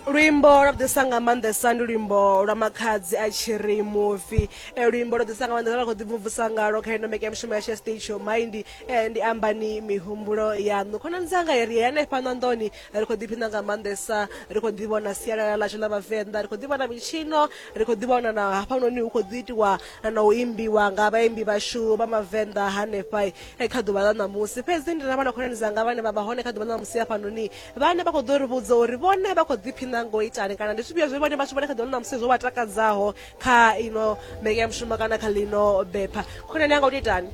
luimbo lwa ḓisa nga maanḓesa ndi luimbo lwa makhadzi a tshi ri mufi eh, luimbo lwa ḓisa nga maanḓesa lwa khou ḓimvumvusa ngalo kha ino meke mishumo yashu ya stage yo maindi eh, ndi ambani mihumbulo yaṋu khonani dzanga ri hanefha ṋanḓoni ri khou ḓiphina nga maanḓesa ri khou ḓivhona sialala ḽashu ḽa vhavenḓa ri khou ḓivhona mitshino ri khou ḓivhona na hafhanoni hu khou ḓi itiwa na u imbiwa nga vhaimbi vhashu vha mavenḓa hanefha eh, kha ḓuvha ḽa ṋamusi fhedzi ndi na vhana khonani dzanga vhane vha vha hone kha ḓuvha ḽa ṋamusi hafhanoni vhane vha khou ḓo ri vhudza uri vhone vha khou ḓiphina ngo itani kana ndi zwifhio zwe vhone vhathu vhane kha ḓuvha ḽa ṋamusi zwo vha takadzaho kha ino mbekanyamushumo kana kha ḽino bepha khonani anga u to itani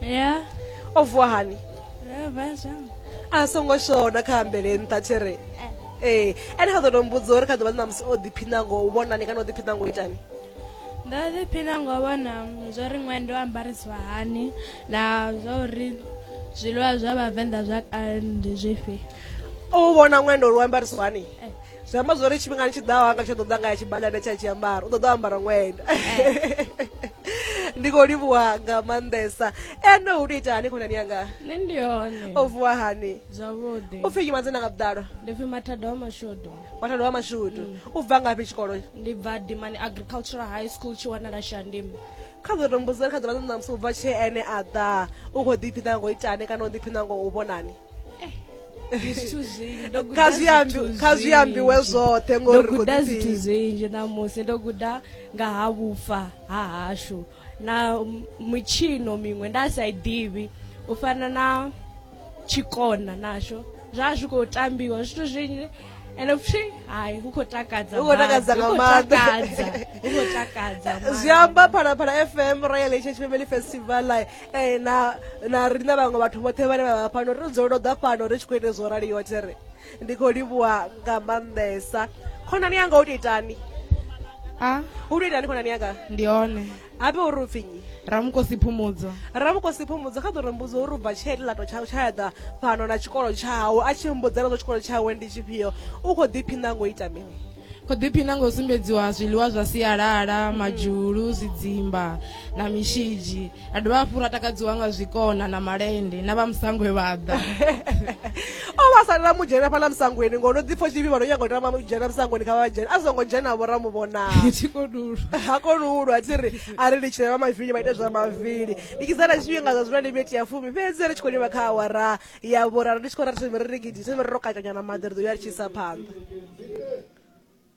ya o vuwa hani a songo shona kha ambele nṱha tshere eh. ee eh, ene kha ḓo to mbudza uri kha ḓuvha ḽa ṋamusi o ḓiphina ngo u vhonani kana o ḓiphina ngo itani nda ḓiphina ngo vhona zwa ri ṅwendo ambarisiwa hani na zwa uri zwiḽiwa zwa vhavenḓa zwa kale ndi zwifhi u vhona ṅwendo lu ambarisiwa hani eh. zwi amba zwo ri tshifhingani tshi ḓaho anga tsho ḓo ḓa nga ya tshibadane tsha tshiambaro u ḓo ḓo ambara ṅwendo eh. ndi khou livhuwa nga maanḓesa ene u tou ita hani khonani yanga nṋe ndi hone o vuwa hani zwavhuḓi u pfhi nyi madzina nga vhuḓalo ndi pfhi mathadoma shodo Mwana wa mashudu mm. u bva ngafhi tshikolo ndi bva dimani agricultural high school tshi wanala shandimi kha ḓo tombuzela kha ḓola ṋamusi u bva tshee ene a ḓa u khou ḓiphina ngo itane kana u ḓiphina ngo u vhonani eh, kha zwi ambiwe zwoṱhe ngoriguda zwithu zwinzhi ṋamusi ndo guda nga ha vhufa ha hashu na mitshino miṅwe nda sa i ḓivhi u fana na tshikona nasho zwa zwi khou tambiwa zwithu zwinzhi ende futhi hayi hu khou takadza hu khou takadza nga maanḓa hu khou takadza zwi amba phalaphala fm royal heritage family festival eh, na na riṋe vhaṅwe vhathu vhoṱhe vhane vha vha fhano ri dzolo ḓa fhano ri tshi khou ita zwo raliwa there ndi khou livhuwa nga maanḓesa khonani yanga u to itani a u to itani khonani yanga ndi hone habe uri u pfinyi ramukosi phumudzo ramukosi phumudzo kha ḓo ri mbudzo uri u bva tshee tilato tshawe tsha yaḓa fhano na tshikolo tshawe a tshi mbudzela zwa tshikolo tshawe ndi tshifhio u khou ḓiphiṋa ngo ita mini kho ḓiphina nga u sumbedziwa zwiḽiwa zwa sialala mm. madzhulu zwidzimba na mishidzi a dovha hafhu ra takadziwa nga zwikona na malende na vha musangwe vha ḓa o vha salela mu dzhena fhaḽa musangweni ngo no ḓipfha tshivhi vha no nyaga u tama u dzhena musangweni kha vha dzhena a songo dzhena vho ra mu vhonaa ha koni u lwa thi ri a ri litshile vha mavili vha ite zwa mavili ndi kizana tshifhinga zwa zwino ndi miti ya fumi fhedzi ri tshi khou livha kha awara ya vhuralo ndi tshi khou ralo ri ri gidise ri ro katanyana maḓi ri ḓo ya ri tshi isa phanḓa